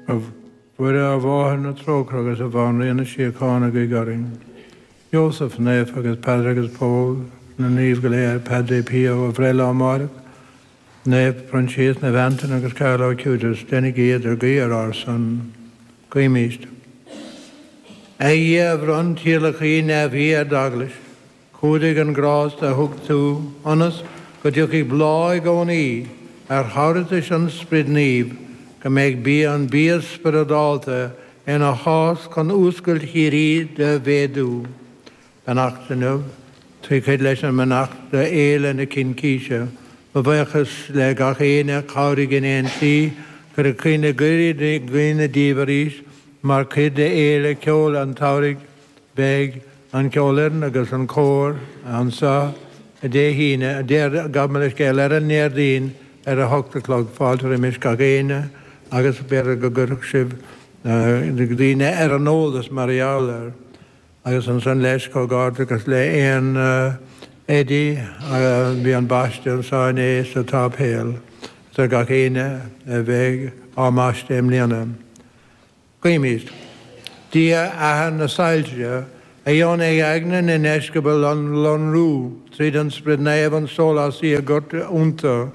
A Mhuire, a Mháthair na trócaire agus a Bhanríon na síochána, guigh orainn, Iósaf naofa agus Peadar agus Pól, na naoimh go léir, Padre Pio, a bhreithlá amáireach, Naomh Proinsias, Naomh Antaine agus Carlo Acutis, deinigí idirghuí ar ár son. Guímíst. A Dhia, a bhronn tíolacthaí neamhaí ar d'Eaglais, Cumhdaigh an grásta a thug tú ionas go dtiocfaidh bláth i gcónaí ar thabhartais an Sprid Naoimh, go mbeidh bia an bia spioradálta ina shás chun fhuascailt shíoraí do mhéadú. Beannacht inniu, trí chuid leis an mbeannacht do Fhéile na Cincíse. Mo bhuíochas le gach éinne a chabhraigh in aon slí, cuireadh caoine goirid i gcuimhne díbh arís mar chuid de Fhéile Ceoil an tSamhraidh. Beidh an ceolfhoireann agus an cór anseo Dé hAoine, a deir Gabh mo leithscéal, ar an nDéardaoin ar a hocht a chlog. Fáilte roimis gach éinne agus b'fhéidir go gcuirfeadh sibh daoine ar an eolas mar gheall air. Agus ansan leis comhghairdeachas le Aon Eddie, bhí an baisteadh anseo inné sa tsáipéal. Is gach éinne a bheidh á mbaisteadh i mbliana. Guímid. Dia athair na soilse, a dheonaigh aigne na ndeisceabal a lonrú tríd an Sprid Naomh an Sólásaí a dhoirteadh iontu,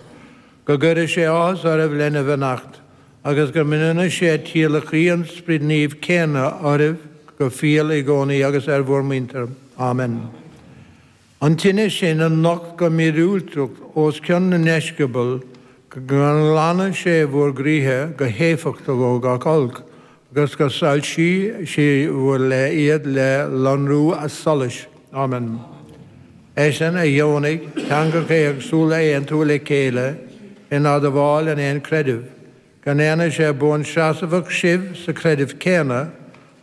go gcuire sé áthas oraibh lena bheannacht, agus go mbronna sé tíolacthaí an Sprid Naoimh céanna oraibh go fial i gcónaí agus ar bhur muintir. Amen. An tine sin a nocht go míorúilteach os cionn na ndeisceabal, go nglana sé bhur gcroíthe go héifeachtach ó gach olc, agus go soilsí sé bhur leith iad le lonrú a solais. Amen. Eisean a dheonaigh teangacha éagsúla a aontú le chéile in admháil an aon chreidimh. go ndéana sé buanseasmhach sibh sa chreideamh céanna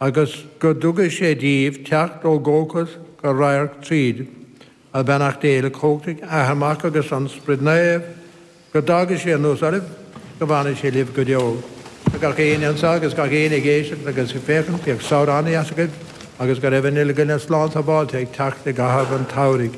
agus go dtugaidh sé díbh teacht ó dhóchas go radharc tríd, agus beannacht Dé Uilechumhachtaigh, Athair Mac agus an Sprid Naomh, go dtagaidh sé anuas oraibh, go bhfanfaidh sé libh go deo. Is gach éinne anso agus gach éinne ag éisteacht agus ag féachaint, bíodh samhradh ana-dheas agaibh agus go raibh an uile dhuine slán sábháilte ag teacht i gcaitheamh an tsamhraidh.